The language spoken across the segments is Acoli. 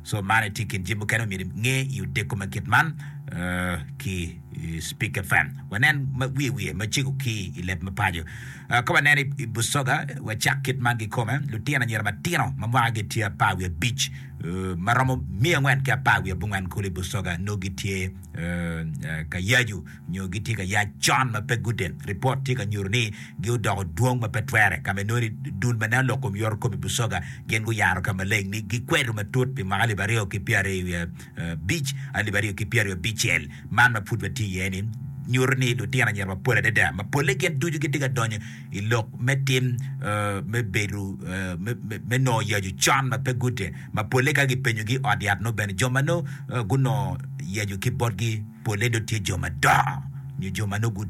So man aye tye i kin jami mukene ma myero inge i odeko ma kit man ki Speak FM. Wanen ma wiye wiye macego ki i leb me paco. Ah, Ka wanen i i Busoga, wacak kit man kikome, lutino anyira matino ma mwakagi tye apar wiye abic, eh, ma romo miya angwen ki apar wiye abongwen kulu i Busoga nongo gitye eh, eh, ka yacu. nyo gitye ka yac con ma pe guden. Ripot tye ka nyuto ni gi odoko dwong ma pe twere, ka ma inongo ni dul ma nen lok kom yoro kome i Busoga gin guyaro ka maleng ni gikwedo matut pi mwaka alip aryo ki pyera i abic, alip aryo ki pyera i abicel. Man ma pud watye iye ni nyuto ni lutino anyira mapol adada ma polle gin ducu gitye ka donyo i lok me tim me bedo me nongo yacu con ma pe guden ma polle ka gipenyogi i ot yat nongo bene jo ma nongo gunongo yacu ki botgi polle dong tye jo madongo nyo jo ma nongo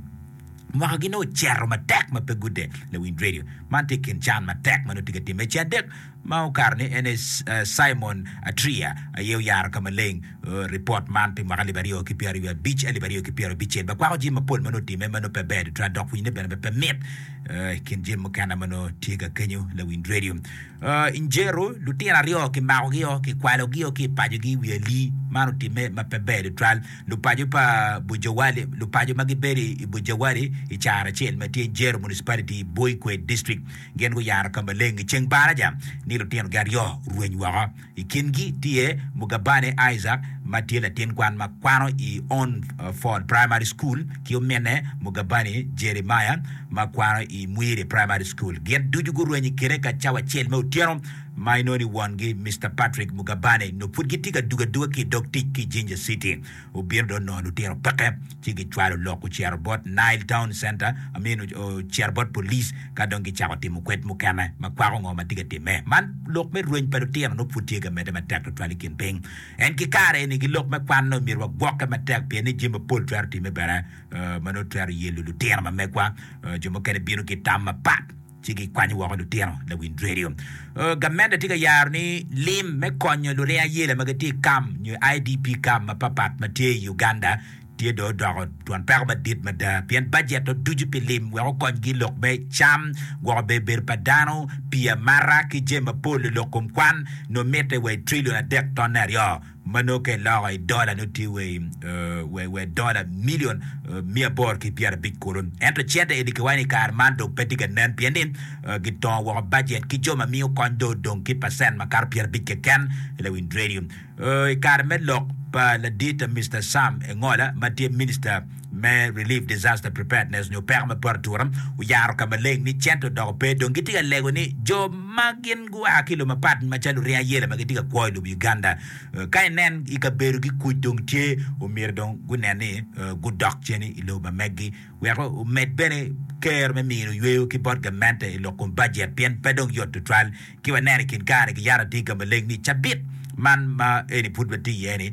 mwaka gi nongo ocito matek ma pe gude lawiny radio. Man tye kin can matek ma nongo tye ka timme. Ce adek ma okato ni en aye Simon Atria aye oyaro ka maleng ripot man pi mwaka alip aryo ki pyeraryo abic, alip aryo ki pyera abicel ma kwako jami mapol ma nongo otimme ma nongo pe ber tutwal dok pwinyne bene pe mit i kin jami mukene ma nongo tye ka kenyo lawiny radio. I Njeru, lutino aryo kimakogi-o, kikwalogi-o ki i pacogi i wi ali. Man otimme ma pe ber tutwal. Lupaco pa Bujawali, Lupaco ma gibedo i Bujawali i caro acel ma tye Njeru Municipality i Buikwe District gin guyaro ka maleng i ceng baraja ni lutinogi aryo orweny woko. I kingi tye Mugabane Isaac ma tye latin kwan ma kwano i Ownford Primary School ki ominne Mugabane Jeremiah ma kwano i Mwiri Primary School. Gin ducu gurwenyo i kine ka cawa acel me otyeno ma inongo ni wongi, Mister Patrick Mugabane, nongo pud gitye ka dugo aduga ki i dog tic ki i Jinja City. Obino dong nongo lutino peke ci gicwalo lok gucito bot Nile Town Center, I mean ocito bot police ka dong gicako timo kwed mukene ma kwako ngo ma tye ka timme. Man lok me rweny pa lutino nongo pud tye ka medde matek tutwal i kin piny. En ki kare eni ki lok me kwan-ni omyero wagwokke matek pien ni jami mapol twero timme bene ma nongo twero yelo lutino ma megwa. Jo mukene bino ki tam mapat. ci gikwanyo woko lutino lawinj redio. Gamente tye ka yaro ni lim me konyo luring ayela ma gitye i kam nyo IDP kam mapatpat ma tye i Uganda tye dong odoko twon peko madit mada pien bajet oducu pi lim wek okonygi lok me cam, gwoko bebedo pa dano, pii amata ki jami mapol i lok kom kwan nongo mitte wa i trilion adek tonne aryo. ma nongo ka iloko i dola nongo tye wa i dola milion miya aboro ki pyerabic kulu. Ento cente eni kiwaco ni i kare man dong pe tye ka nen pien ni gitongo woko bajet ki jo ma miyo kony dong odong ki pacent makato pyerabic keken i lawiny redio. I kare me lok pa ladita Mister Sam Engola ma tye minista me Relief Disaster Preparedness nyo Peko me Poto Atura oyaro ka maleng ni cente odoko pe dong gitye ka lego ni jo ma gin gua ki i lobo mapat macalo Luryek Ayela ma gitye ka kwo i lobo Uganda ka inen i kabedogi kuc dong tye omyero dong gunen ni gudok cen i lobo ma megi wek omed bene kero me mino yweyo ki bot gamente i lok kom bajet pien pe dong yot tutwal Ki waneno i kin kare-ni ki yat adiga maleng ni cabit man ma eni pud watye iye-ni,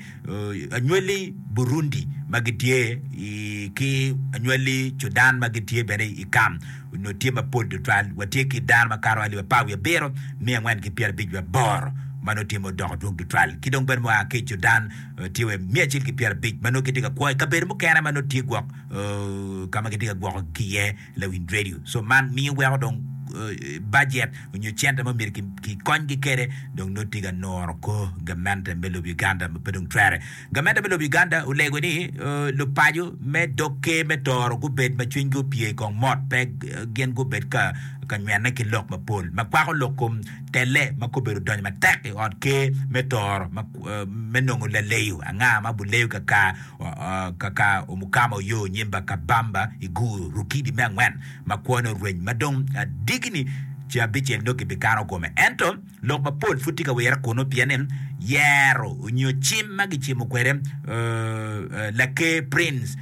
anywali Burundi ma gitye i ki anywali Cudan ma gitye bene i kam onongo tye mapol tutwal. Watye ki dano makato alip apar wiye abiro, miya angwen ki pyerabic wiye aboro ma nongo tye ma odoko dwong tutwal, ki dong bene mua ki i Cudan tye wa miya acel ki pyerabic ma nongo gitye ka kwo i kabedo mukene ma nongo tye gwok ka ma gitye ka gwoko ki iye. Lawiny redio so man miyo weko dong bajet onyo cente ma myero ki konygi kede dong nongo tye ka nuro kor gamente me lob Uganda ma pe dong twere. Gamente me lob Uganda olego ni lupaco me dog ker me Tooro gubed ma cwinygi opye ikong mot pe gin gubed ka ka nywene ki lok mapol ma kwako lok kom telle ma kobedo donyo matek i ot ker me Tooro me nongo laleyo anga ma buleyo kakar Kaka omukama oyo nyimba ka bamba i gur rukidi me angwen ma kwone orweny ma dong adigini ce abicel nyo gibikano kome. Ento lok mapol pud tye ka wirre kunu pien ni yero nyo cim ma gicimo kwede Laker Prince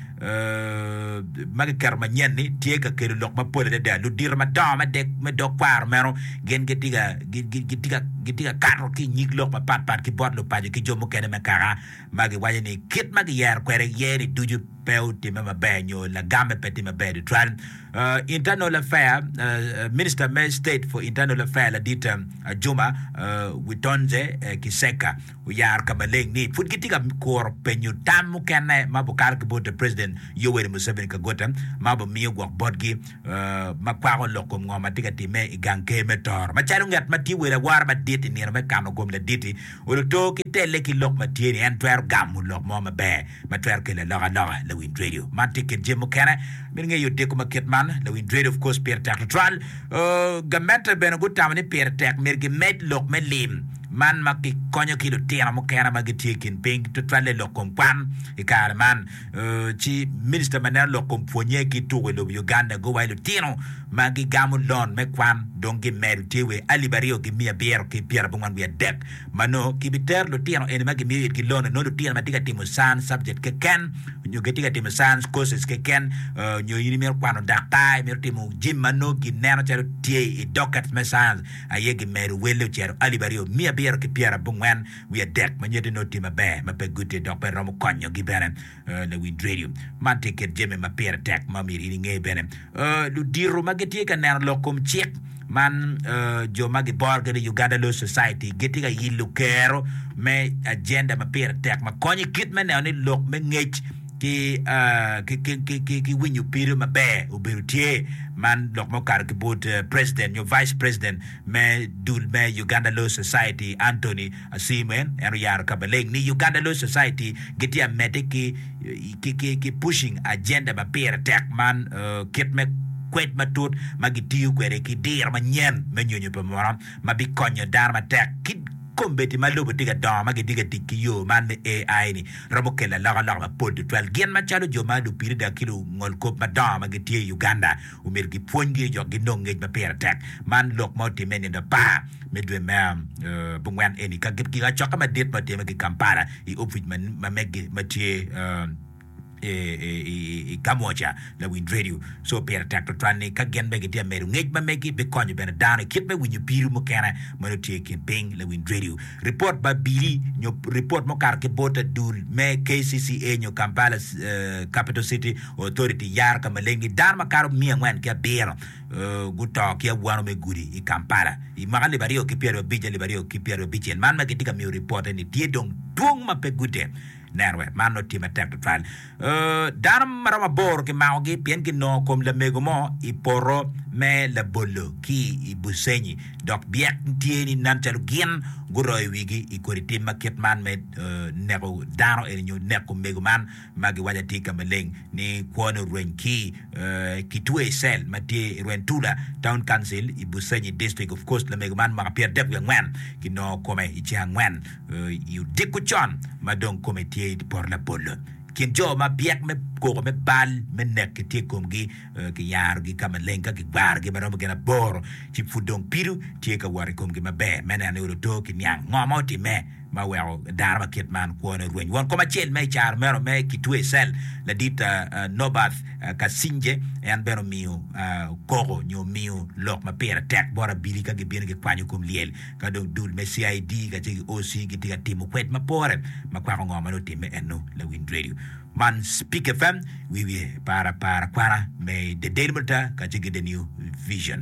ma giketo manyen ni tye ka kelo lok mapol adada. Ludito madongo me dek me dog kwaro meno gin gitye ka gitye ka gitye ka kato ki i nyig lok mapatpat ki bot lupaco ki jo mukene me kaka ma giwaco ni kit ma giyero kwede iye-ni ducu pe otimme maber nyo lagamme pe tye maber tutwal. Internal Affair, Minista me State for Internal Affair ladit Ajuma Witonze Kiseka oyaro ka maleng ni pud gitye ka kuro penyo tam mukene ma obikalo ki bot President Yoweri Museveni Kaguta ma obimiyo gwok botgi ma kwako lok kom ngo ma tye ka timme i gang ker me Toro macalo ngat ma tye wel awora madit i nino me kano gom laditi Oluto ki telle ki lok ma tye ni en twero gamo lok mo maber ma twero kelo alokaloka. Lawinj radio man tye kit jami mukene mito ngeyo odiko ma kit man. Lawinj radio of course pire tek tutwal. Gamente bene gutamo ni pire tek myero gimed lok me lim man ma gikonyo ki lutino mukene ma gitye i kin piny tutwalle lok kom kwan i kare man. ci Minista ma neno lok kom pwonye ki tuko i lobo Uganda go wa i lutino ma gigamo lon me kwan dong gimedo tye wa i alip aryo ki miya abiro ki pyera abongwen wiye adek ma nongo ki bi tero lutino eni ma gimiyo itgi lon-ni nongo lutino ma tye ka timo science subject keken nyo gitye ka timo science courses keken nyo in imito kwano daktar imito timo jim ma nongo gi neno calo tye i dockets me science aye gimedo welle ocito alip aryo miya abiro ki pyera abongwen wiye adek ma nyuto ni oti maber ma pe guti dok pe romo konyogi bene. Lawinj redio man tye kit jami ma pire tek ma myero in inge bene. Ludito ma gitye ka neno lok kom cik man, jo ma giboro kede Uganda Law Society, gitye ka yillo kero me ajenda ma pire tek ma konyo i kit me neno ni lok me ngec ki winyo pido maber obedo tye. Man lok ma okato ki bot president nyo vice president. me dul me Uganda Law Society, Anthony Asiimwe, en oyaro ka maleng ni Uganda Law Society gitye ka medde ki pushing agenda ma pire tek man kit me kwed matut ma gitiyo kwede ki diro manyen me nyonyo pa munu ma bikonyo dano matek ki kombeddi ma lobo tye ka dongo ma gitye ka tic ki yo man me AI ni romo kelo alokaloka mapol tutwal gin macalo jo ma lupiri dok ki lungolkop madongo ma gitye i Uganda omyero gipwony gi jo ginong ngec ma pire tek. Man lok ma otimme i nino apar me dwe me abongwen eni ka gigacokke madit ma otimme ki Kampala i opic ma meggi ma tye i Kamwokya lawind redio. Co pire tek twatwal ni ka gin bene gitye ka medo ngec ma meggi bikonyo bene dano i kit me winyo pido mukene ma nongo tye i kin piny lawind redio. Ripot ma bili nyo ripot mukato ki bot adul me KCCA nyo Kampala Capital City Authority yaro ka maleng ni dano makato miya angwen ki abiro guto ki awano me gudi i Kampala i mwaka alip aryo ki pyeraryo abic alip aryo ki pyeraryo abicel. Man ma kitye ka miyo ripote ni tye dong dwong ma pe gute neno wek man nongo tye matek tutwal. Dano maromo aboro kimakogi pien ginongo kom lamego mo i poto me labolo ki i Busenyi dok byek tye ni nen calo gin guroyo wigi i kodi tim ma kit man me neko dano eni nyo neko mego man ma giwaco atika maleng ni kwone orweny ki ki twe i cell ma tye i Rwentula Town Council i Busenyi District of Coast. Lamego man mwaka pyera dek wiye angwen ki nongo kome i ceng angwen i odiko con ma dong kome tye i poto labolo. Kin jo ma byek me koko me bal me nek ki tye i komgi ki yaro gi ka maleng ka ki gwaro gi ma romo gin aboro ci pud dong pido tye ka wot i komgi maber me neno ni olo to ki niang ngo ma otime. ma weko dano ma kit man kwone orweny. Won kom acel ma i caro meno me kitwe i cell ladit Norbert Katzinger en bene omiyo koko nyo omiyo lok ma pire tek bot abili ka gibino gikwanyo kom lyel ka dong dul me CID kacel ki OC gitye ka timo kwed mapore ma kwako ngo ma nongo otimme eno. Lawiny Radio man Speak FM wiye par apar kwana me The Daily Monitor kacel ki The New Vision.